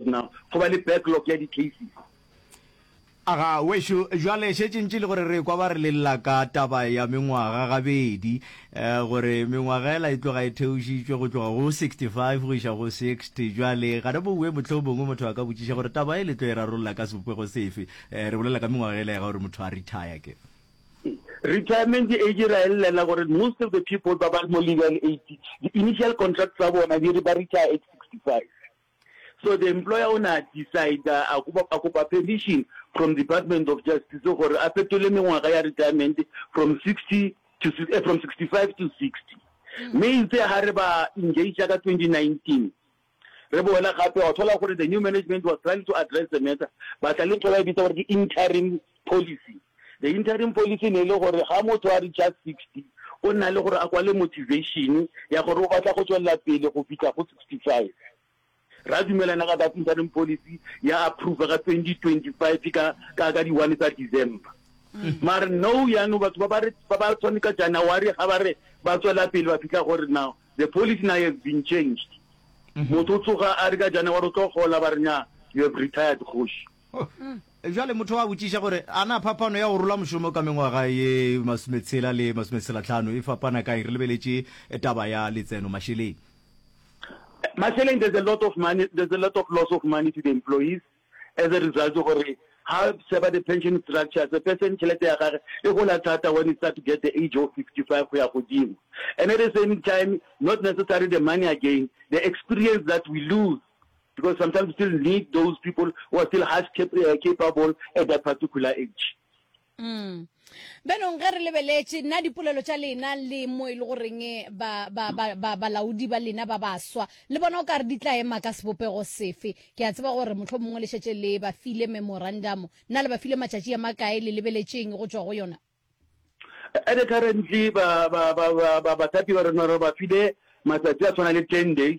Na go ba le backlog ya di-cases? Aga, wešo, bjale šetše ntše e le gore re ekwa ba re lella ka taba ya mengwaga gabedi, eh, gore mengwagela e tloga e theošitšwe go tloga go sixty-five go iša go sixty. Bjale ga re bowe, mohlomongwe motho a ka botšiša gore taba e le tlo e rarolla ka sebopego sefe. Eh, re bolela ka mengwagela ya ga gore motho a retire ke. Retirement age ra e llela gore most of the people ba ba mo legal age, di-initial contract tsa bona di re ba retire at sixty-five. So the employer o ne a decider a kopa, a kopa permission from Department of Justice gore a fetole mengwaga ya retirement from 60 to, eh, from 65 to 60. Mme itse ha re ba engagea ka 2019, re boela gape wa thola gore the new management was trying to address the matter, ba tla le ntho ba e bitsa gore ke interim Policy, The interim policy ne e le gore ga motho a reacher sixty o nna le gore a kwale motivation ya gore o batla go tšwelela pele go fihla go sixty five. Ra dumelana ka that interim policy ya approver ka twenty twenty five ka ka ka di one tsa December. Mm. Mare no yano batho ba ba re ba ba tshwane ka January ga ba re ba tswela pele ba fihla gore now the policy now has been changed. Mm-hmm. Motho o tsoga a re ka January o tlo gola ba re nya you have retired kgoši. Bjale motho a botšiša gore, A na phapano ya go rola mošomo ka mengwaga ye masometshela le masometshelatlhano e fapana kae re lebeletše taba ya letseno mašeleng? Mašeleng, there's a lot of money, there's a lot of loss of money to the employees as a result gore ha sheba the pension structures, a person tšhelete ya gage e gola thata when he start to get the age of 55 go ya godimo. And at the same time, not necessary the money again, the experience that we lose. Because sometimes we still need those people who are still half uh, capable at that particular age. Mm. benong ge re lebeletše nna dipolelo tša lena le mo e le goreng balaodi ba lena ba baswa le bona o ka re di tla ema ka sebopego sefe ke a tseba gore motlho mongwe le šetse le ba file memorandum nna le ba file matšatši a makae le lebeletšeng go tswa go yona At the currently ba ba ba ba ba bathapi ba rona re ba file matsatsi a tshwana le ten days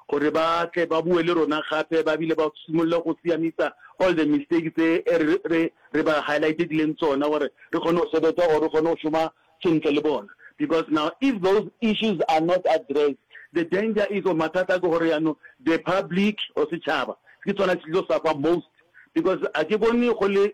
gore ba tle ba bue le rona gape ba bile ba simolole go siamisa all the mistake tse re re re ba highlightileng tsona gore re kgone go sebetsa or re kgone go šoma sentle le bona because now if those issues are not addressed the danger is or mathata ke gore yaanong the public or setšhaba ke tsona se tlo suffer most because a ke bone go le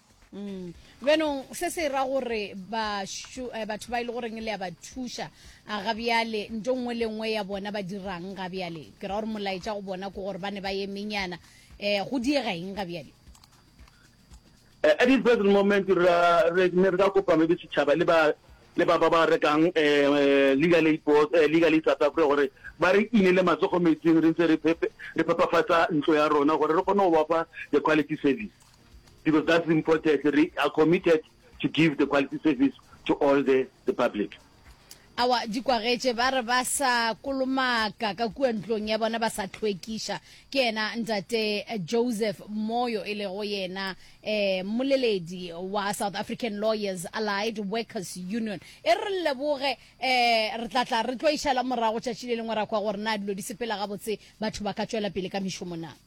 Mm. benong se se ra gore eh, batho ba e le goreng le ya ba thuša a ga bjale nto nngwe le nngwe ya bona ba dirang ga bjale ke ra gore molaetša go bona ko gore ba ne ba ye menyana um go diega eng ga bjale eh, at the present moment re ne re ka kopa maybe setšhaba le ba le ba ba ba rekang um legal aid board um legal aid south africa gore ba re inele matsogo metsing re ntse re phepafatsa ntlo ya rona gore re kgone go bafa the quality service because that's the importance re are committed to give the quality service to all the, the public awa di kwagetše ba re ba sa kolomaka ka kua ntlong ya bona ba sa tlhwekiša ke yena ntate joseph moyo e lego yena um moleledi wa south african lawyers allied workers union e re leboge um re tla tla re tlo išala morago tšatši le lengwe ra kwa gore na dilo di sepela gabotse batho ba ka tšwela pele ka mešomo na